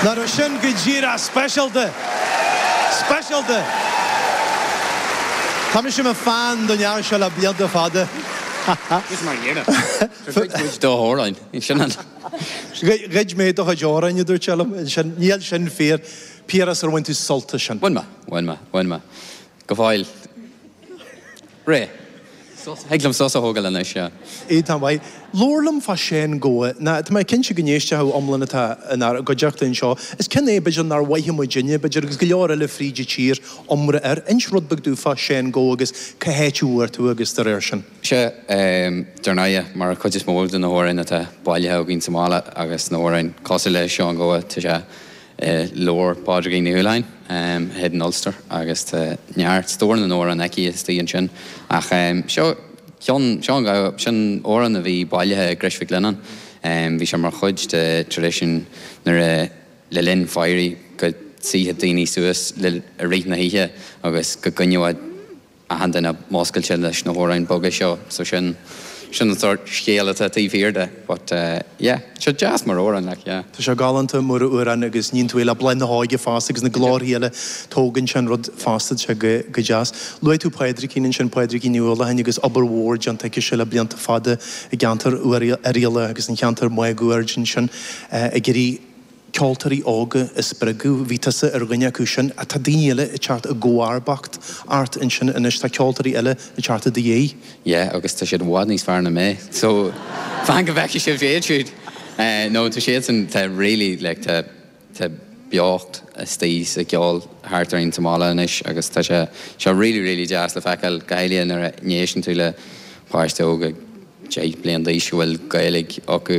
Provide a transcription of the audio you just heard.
Ná raibh sin go díreach speisialta! Speisialta! Tá mise ina fan den fhear seo le blianta fada. Ha ha. Is faoi dheireadh. Gur ghoid muid do chuid amhrán. Is sin an. Ghoid mé do chuid amhrán, a dúirt sé liom. Ansin, níl sin fíor. Piaras, ar bhain tú sult as sin? Bhain mé. Bhain mé. Bhain mé. Go fóill. Réidh. Thig liom sos a thógáil anois, sea. Sea, tá maith. Labhair liom fá Séan Gabha, nó tá mé cinnte go n-éistfidh achan... iomlán atá inár gcuideachta anseo. Is ceann é, b'fhéidir, nár mhoithigh muidinne, b'fhéidir, agus go leor eile fríd a tír, iomrá air. Inis rud beag domh fá Séan Gabha agus cá háit a bhfuair tú é agus dá réir sin. Sea, dar ndóighe, mar an chuid is mó de na hamhráin atá bailithe againn sa mbaile agus na hamhráin cosúil le Séan Gabha, tá sé. i leabhar Pádraigín Ní Uallacháin, A Hidden Ulster agus tá neart, stór na n-amhrán aici istigh ansin ach seo ceann Séan Gabha, sin amhrán a bhí bailithe i gCrois Mhic Lionnáin. Bhí sé mar chuid den traidisiún nuair a le linn fairí go suífeadh daoine suas i rith na hoíche agus go gcoinneodh a achan duine múscailte leis na hamhráin boga seo so sin, sin an sórt scéal atá taobh thiar de but eh yeah, so deas mar amhrán. Tá sé galánta mar amhrán agus níonn tú é le Bláth na hÓige fosta agus na glórthaí eile, tógann sé an rud fosta, tá sé go, go deas. Luaigh tú Pádraigín ansin, Pádraigín Ní Uallacháin agus obair mhór déanta aici le blianta fada i gceantar Oirialla agus sa cheantar máguaird ansin eh ag iarraidh, ceoltóirí óga a spreagadh. Bhí tusa ar dhuine acu sin. Tá daoine eile ag teacht i gcomharbacht ort ansin anois. Tá ceoltóirí eile ag teacht i do dhiaidh. Yeah, agus tá siad i bhfad níos fearr ná mé. So, fan go bhfeicfidh sibh iad siúd! No, tá siadsan, tá really, like, tá, tá beocht iontach sa gceol thart orainn sa mbaile anois agus tá sé, sé really, really deas le feiceáil, go háirithe nuair a éisteann tú le páiste óg ag deich bliain d'aois a bhfuil Gaeilg acu.